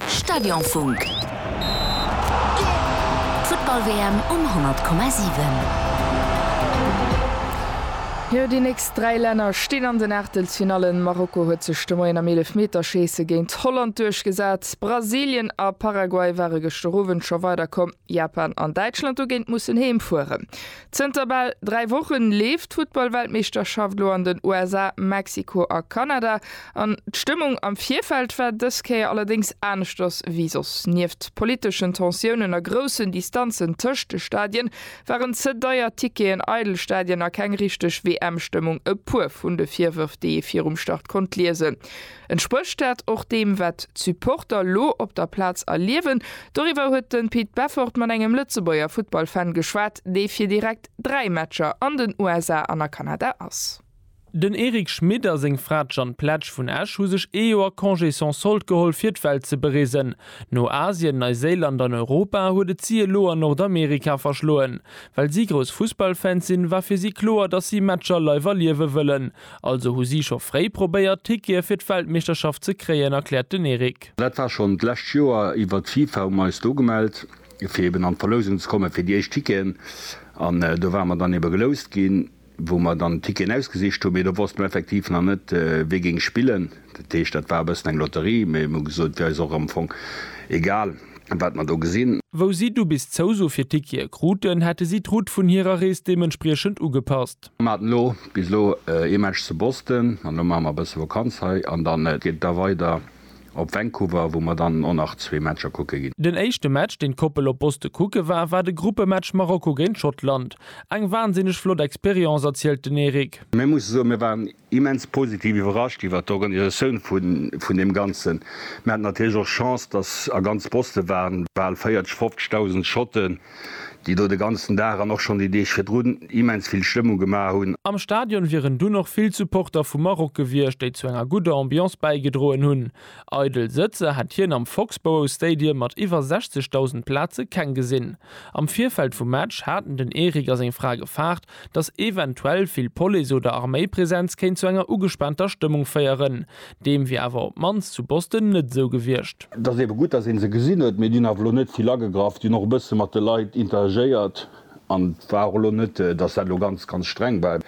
Stadionfunk. D'Futtball-WM um 100,7. Jo, déi nächst dräi Länner stinn an den Aachtelsfinallen. Marokko huet sech de Moien am Eelefmeterscheesse géint Holland duerchgesat. Brasilien a Paraguay ware gëschter Owend scho weiderkomm. Japan an Däitschland hu géint mussen heemfueren. Zënter bal 3 Wochen leeft d'Futtballweltmeeschterschaft lo an den USA, Mexiko a Kanada an d'Stëmmung am Virfeld war dës Kéier allerdéngs aneschters wéi soss. Nieft politeschen Tensiounen a groussen Distanzen tëscht de Stadien, waren ze deier Ticketen, eidel Stadien a keng richteg WM-Stëmmung e puer vun de Virwërf, déi ee virum Start konnt liesen. Entsprécht dat och deem, wat d'Supporter elo op der Plaz erliewen? Doriwwer huet de Pit Beffort mat engem Lëtzebuerger Futtballfan geschwat, dee fir direkt dräi Matcher an den USA an a Kanada ass. Den Eric Schmit a seng Fra d'Jeanne Pletsch vun Esch hu sech ee Joer Congé sans solde geholl, fir d'Welt ze bereesen. No Asien, Neiséiland an Europa huet et si elo an Nordamerika verschloen. Well si grouss Fussballfans sinn, war fir si kloer, datt si Matcher live erliewe wëllen. Also hu si scho fréi probéiert, Tickete fir d'Weltmeeschterschaft ze kréien, erkläert den Eric. Dat war schonn d'lescht Joer iwwert d'FIFA, hu mer eis do gemellt, fir eben an d'Verlousung ze kommen, fir déi éischt Ticketen. An do ware mer dann ebe geloust ginn, wou mer dann d'Ticketen ausgesicht hunn. Mee do wosste mer effektiv nach net, wie géing spillen. Dat heescht, dat war e bëssen eng Lotterie. Mee mir hu gesot, wier eis och am Fong egal, wat mer do gesinn. Wou si du bis d'Zouso fir d'Tickete kruten, hätte si d'Route vun hirer Rees deementspriechend ugepasst. Mir haten elo bis elo ee Match zu Boston an elo maache mer e bësse Vakanz hei an dann geet et da weider op Vancouver, wou mer dann och nach zwee Matcher kucke ginn. Den éischte Match, deen d'Koppel op Boston kucke war, war de Gruppematch Marokko géint Schottland. Eng wansinneg flott Experience, erzielt den Eric. Mir musse soen, mir waren immens positiv iwwerrascht iwwert d'Organisatioun vun deem Ganzen. Mir haten natierlech och Chance, dass a ganz Boston waren bal 40, 50.000 Schotten, déi do de ganzen Dag an och schonn déi Deeg virdrun immens vill Stëmmung gemaach hunn. Am Stadion wieren dunn och vill Supporter vum Maroc gewiescht, déi zu enger gudder Ambiance bäigedroen hunn. Eidel Sëtzer hätt hien am Foxborough Stadium mat iwwer 60.000 Plaze keng gesinn. Am Virfeld vum Match haten den Eric a seng Fra gefaart, dass eventuell vill Police oder Arméipresenz kéint zu enger ugespaanter Stëmmung féieren. Deem wier awer op d'mannst zu Boston net esou gewiescht. Et ass eebe gutt, dass ee se gesinn huet, mee déi hunn awer elo net vill agegraff. Déi hunn och e bësse mat de Leit interagéiert an et war och elo net, dass dat elo ganz, ganz streng war.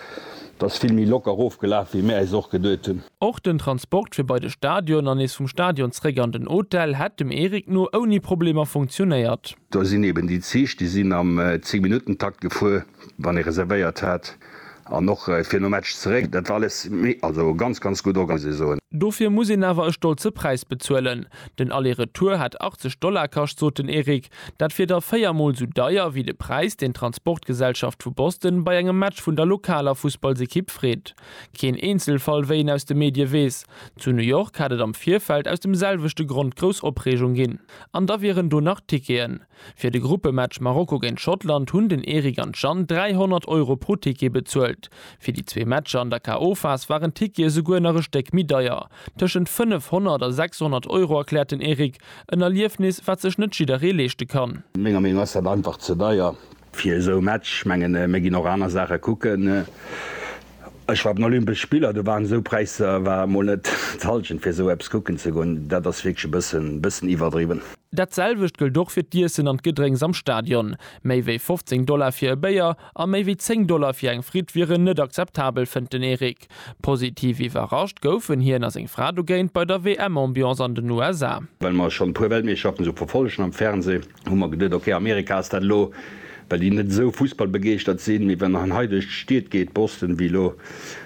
Et ass vill méi locker ofgelaf, wéi mir äis och geduet hunn. Och den Transport fir bei de Stadion an nees vum Stadion zréck an den Hotel hätt dem Eric no ouni Problemer funktionéiert. Do sinn eben déi Zich, déi sinn am Zéngminuttentakt gefuer, wann ee reservéiert hat, an och fir nom Match zeréck. Dat war alles méi, also ganz, ganz gutt orga, muss ee soen. Dofir muss een awer e stolze Präis bezuelen. Den Aller-Retour hätt 80 Dollar kascht, sot den Eric. Dat wier da véier Mol esou deier wéi de Präis, deen d'Transportgesellschaft vu Boston bei engem Match vun der lokaler Fussballsekipp freet. Keen Eenzelfall, wéi een aus de Medie weess. Zu New York hätt et am Virfeld aus dem selwechte Grond grouss Opreegung ginn. An da wieren do nach Ticketen. Fir de Gruppematch Marokko géint Schottland hunn den Eric an d'Jeanne 300 Euro pro Ticket bezuelt. Fir déi zwee Matcher an der KO-Phas waren d'Tickete esouguer nach e Stéck méi deier, tëschent 500 a 600 Euro, erkläert den Eric. En Erliefnis, wat sech net jidderee leeschte kann. Menger Meenung ass dat einfach ze deier. Fir esou e Match, ech mengen mir ginn och aner Saache kucken. Ech war op den Olympesch Spiller, do waren esou Präisser, war mol net d'Hallschent fir esou eppes kucken ze goen. Dat ass wierklech e bëssen bëssen iwwerdriwwen. Dat selwecht gëllt och fir d'Iessen an d'Gedrénks am Stadion. Méi wéi 15 Dollar fir e Béier a méi wéi 10 Dollar fir eng Fritt wieren net akzeptabel, fënnt den Eric. Musk. Positiv iwwerrascht goufen hien a seng Fra dogéint bei der WM-Ambiance an den USA. Well mer schonn e puer Weltmeeschterschaften esou verfollegen am Fernseh, hu mer geduet, ok, Amerika ass dat elo, well déi net esou fussballbegeeschtert sinn. Mee wann en hei duerch d'Stied geet, Boston wéi elo,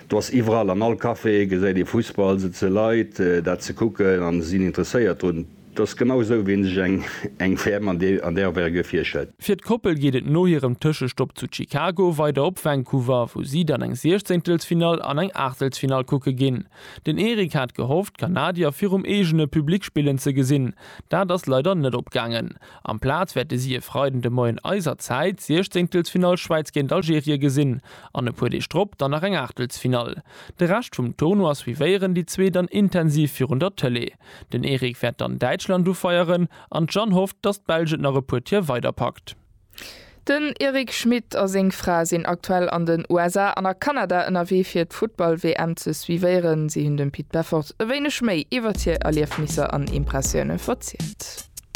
do ass iwwerall, an all Café gesäit ee Fussball, sëtze Leit dat ze kucken a sinn interesséiert drun. 't ass genau esou wéi een sech eng eng Ferm an an där Affaire ge virstellt. Fir d'Koppel geet et no hirem Tëschestopp zu Chicago weider op Vancouver, wou si dann eng Siechzéngtelsfinall an eng Aachtelsfinall kucke ginn. Den Eric hat gehofft, d'Kanadier virum eegene Public spillen ze gesinn. Dat ass leider net opgaangen. Amplaz wäerte si e Freiden de Moien eiser Zäit d'Siechzéngtelsfinall Schwäiz géint Algerie gesinn an e puer Deeg drop dann nach eng Aachtelsfinall. De Rescht vum Tournoi suivéieren déi zwee dann intensiv virun der Tëlee. Den Eric wäert dann Däitschland ufeieren an d'Jeanne hofft, datt d'Belsch et nach e puer Tier weider packt. Den Eric Schmit a seng Fra sinn aktuell an den USA an a Kanada ënnerwee fir d'Futtball-WM ze suivéieren. Si hunn dem Pit Beffort e wéineg méi iwwert hir Erliefnisser an Impressioune verzielt.